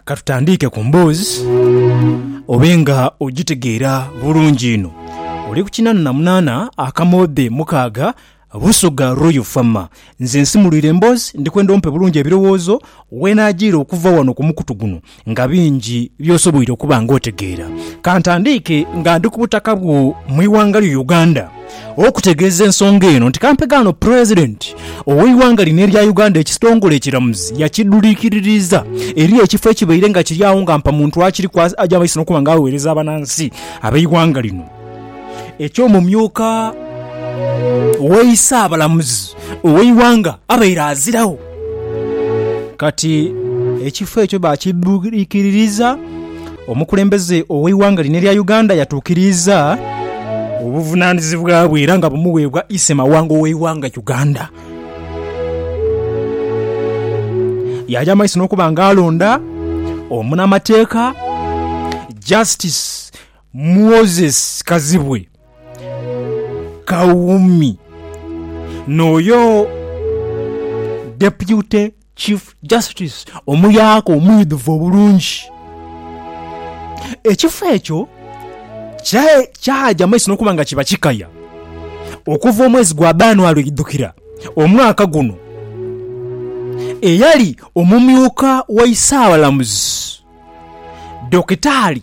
katutandiike ku mboozi obe nga ogitegeera bulungi ino oli ku kinana na munana akamoodhe mukaaga busoga royal fama nze nsimulwire emboozi ndikwenda ompe bulungi ebirowoozo wenagiire okuva wano ku mukutu guno nga bingi byosoboire okuba nga otegeera kantandiike nga ndi ku butaka bwo mu iwanga lyo uganda okutegeeza ensonga eno nti kampega ono President ow'eighanga lino erya Uganda ekistongole ekiramuzi yakidhuliikiririiza eri ekifo ekibaire nga kiri agho nga mpamuntu akiriku aja maiso n'okuba nga aweereza abanansi ab'eighanga lino eky'omumyuka w'eisaabalamuzi ow'eighanga abaire aziragho. Kati ekifo ekyo baakidhwikiririza, omukulembeze ow'eighanga lino erya Uganda yatuukiriiza obuvunaanyizibwa bwe era nga bumuweebwa Issemawanga ow'eighanga Uganda. Yaagya mu maiso n'okuba nga alonda omunamateeka Justice Moses Kazibwe Kawumi n'oyo Deputy Chief Justice omuyaka omwidhuvu obulungi. Ekifo ekyo kyaja maiso n'okuba nga kiba kikaya okuva omwezi gwa Bbaanwali oidhukira omwaka guno. Eyali omumyuka wa Isaabalamuzi Dokitaali.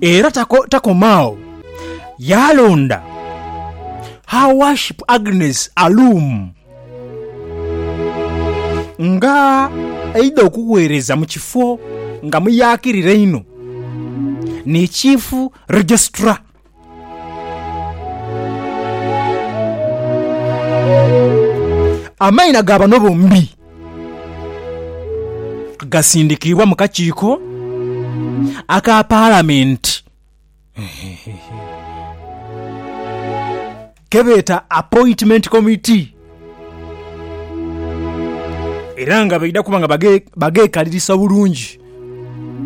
Era takoma agho, yaalonda Her Worship Agnes Alum nga aidha okugheereza mu kifo nga muyaakirire inho ni Chief Registrar. Amaina ga bano bombi gasindikiibwa mu kakiiko aka Palamenti kebeeta Appointment Committee era nga baidha kuba nga bagekalirisa bulungi.